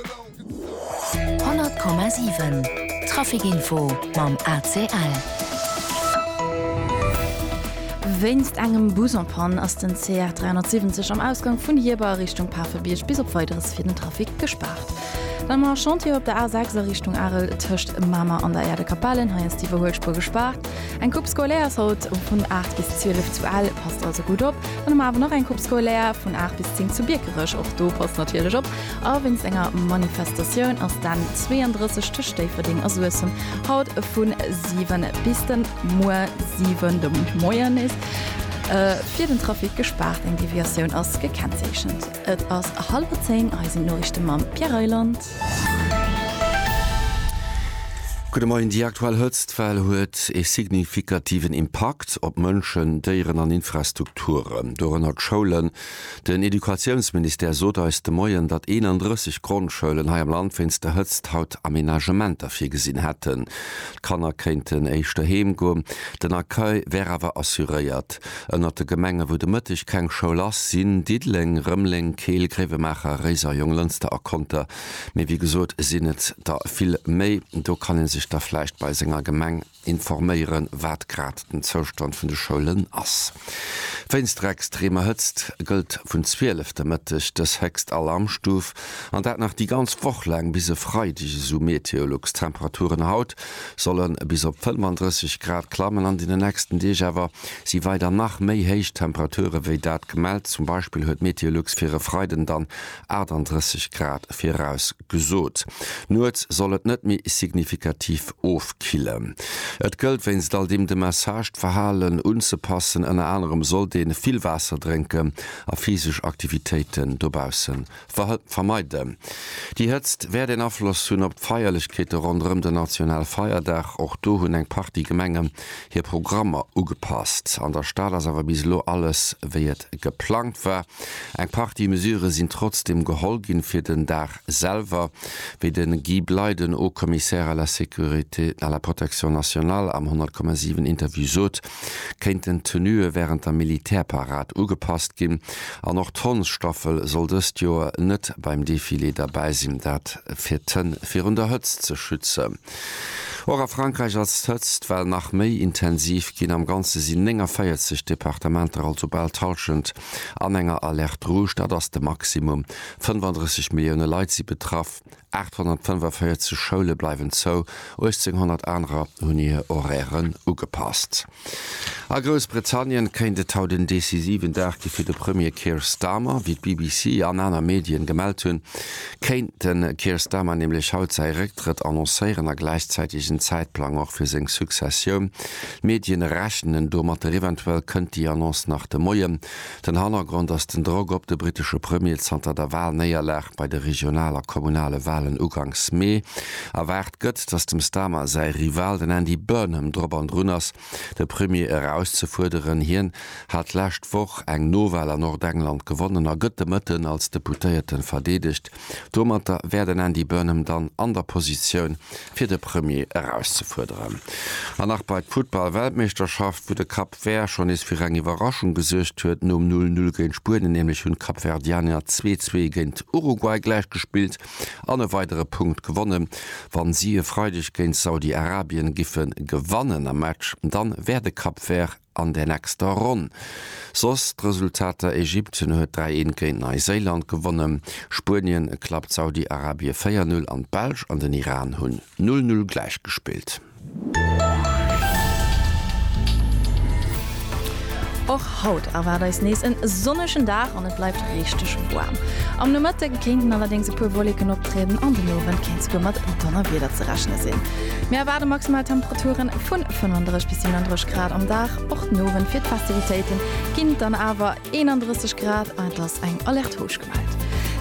100,7 Traficinfo mam ACL. Wéinst engem Bus en panne ass den CR 370 am Ausgang vun Hierber a Richtung Pafebierg bis op Weideres fir den Trafic gespaart. Dann mar Chantieren op der A 6 a Richtung Arel tëscht Mamer an der Aire de Capellen. Hei ass d'Iwwerhuelspuer gespaart. Eng Coupe scolaire ass haut vun 8 bis 12 zu Ell, passt also gutt op. Dann hu mer awer nach eng Coupe scolaire vun 8 bis 10 zu Biekerech. Och do passt natierlech op. A wéinst enger Manifestatioun ass d'N 32 tëscht Déifferdeng a Suessem haut vu 7 bis de muer 7 de Moien nees fir den Trafic gespaart. Eng Deviatioun ass gekennzeechent. Et ass hallwer zéng. Hei sinn d'Noriichte mam Pierre Reyland. Gudde Moien. Déi aktuell Hëtztwell huet ee signifikativen Impakt op Mënschen, Déieren an Infrastrukturen, dorënner d'Schoulen. Den Educatiounsministère sot eis de Moien, datt 31 Grondschoulen hei am Land wéinst der Hëtzt haut Amenagementer virgesinn hätten. D'Kanner kéinten éischter heem goen, den Accueil wär awer assuréiert. Ënnert de Gemenge wou de Mëtteg keng Schoul ass, sinn Diddeleng, Rëmeleng, Keel, Gréiwemaacher, Réiser, Jonglënster a Conter. Mee wéi gesot sinn et der vill méi. Do kann ee sech da vläicht bei senger Gemeng. informéieren, wat grad den Zoustand vun de Schoulen ass. Wéinst der extremer Hëtzt gëllt vun 12 de Mëtteg dës héchst Alarmstuf, an dat nach déi ganz Woch laang bis e Freideg, esou Meteolux. D'Temperaturen haut solle bis op 35 Grad klammen, an den nächsten Deeg awer si weider nach méi héich Temperature wéi dat gemellt. Zum Beispill huet Meteolux fir e Freiden dann 38 Grad virausgesot. Gesot. Nuets soll et net méi signifikativ ofkillen. Et gëllt wéinst all deem de Message, d'Verhalen unzepassen. Ënner anerem sollt ee vill Waasser drénken a physesch Aktivitéiten dobausse vermeiden. Déi Hëtzt wäert een Afloss hunn op d'Feierlechkeete ronderëm den Nationalfeierdag. Och do hunn eng Partie Gemenge hir Programmer ugepasst. An der Stad ass awer bis elo alles wéi et geplangt war. Eng Partie Mesure sinn trotzdeem geholl ginn fir den Dag selwer, wéi de Guy Bley, den Haut-Commissaire à la sécurité et à la protection nationale am 100,7 Interview sot, kéinten d'Tenuë wärend der Militärparad ugepasst ginn. An och d'Hondsstaffel soll dëst Joer net beim Defilé derbäi sinn, dat fir d'Hënn virun der Hëtzt ze schützen. Och a Frankräich ass d'Hëtzt well nach méi intensiv ginn. Am Ganze sinn 49 Departementer, also bal d'Hallschent, an enger Alerte rouge. Dat ass de Maximum. 35 Millioune Leit si betraff, 845 Schoule bleiwen zou, 1.800 anerer hunn hir Horairen ugepasst. A Groussbritannien kéint et haut en decisiven Dag gi fir de Premier Keir Starmer. Wéi d'BBC an aner Medien gemellt hunn, kéint de Keir Starmer nämlech haut säi Récktrëtt annoncéieren a gläichzäiteg en Zäitplang och fir seng Successioun. D'Medien rechnen domat. Eventuell kënnt déi Annonce nach de Moien. Den Hannergrond ass den Drock op de brittesche Premier. Zanter der Walnéierlag bei de Regional a Kommunale Walen uganks Mee erwaart gëtt, datt dem Starmer säi Rival, den Andy Burnham, drop an drun ass, de Premier erauszefuerderen. Hien hat d'lescht Woch eng Nowal a Nordengland gewonnen a gëtt de Mëtten als Deputéierten verdeedegt. Domatter wär den Andy Burnham dann an der Positioun, fir de Premier erauszefuerderen. An nach bei d'Futtball-Weltmeeschterschaft, wou de Cup D'Wehr schonn nees fir eng Iwwerraschung gesuergt huet nom 'Null Null' géint Spuenien, nämlech hunn d'Kapverdianer 2-2 géint Uruguay gläich gespillt an e weidere Punkt gewonnen. Wa si e Freideg géint Saudi-Arabien giffe gewannen am Match, dann wär de Kapvert an der nächster Ronn. Soss d'Resultater, Ägypten huet 3-1 géint Neiséiland gewonnen, Spuenien klappt Saudi-Arabie 4-0 an d'Belsch an den Iran hunn 0-0 gläich gespillt. Och haut erwaart eis nees en sonnegen Dag an et bleift richteg waarm. Am Nomëtte kéinten allerdéngs e puer Wolleken optrieden an den Owend kéint souguer mat Donnerwieder ze rechne sinn. Mir erwaarde maximal Temperature vu 35 bis 37 Grad am Dag. Och den Owend fir d'Festivitéite ginn et dann awer 31 Grad an et ass eng Alerte rouge gemellt.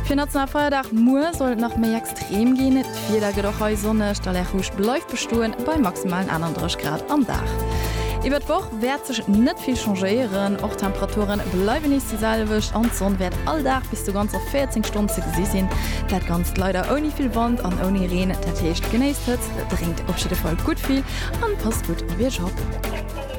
Fir Nationalfeierdag muer soll et nach méi extrem. D'Reem ginn net, d'Wieder gëtt och hei sonneg, d'Alerte rouge bleift bestoen bei maximalen 31 Grad am Dag. Iwwert d'Woch wäert sech net vill changéieren, och d'Temperature bleiwen nees déi selwecht an d'Sonn wäert all Dag bis zu ganzer 14 Stonnen ze gesi sinn. Dat Ganzt leider ouni vill Wand an ouni Reen. Dat heescht, genéisst d'Hëtzt, drénkt op jidde Fall gutt vill an passt gutt op Iech op.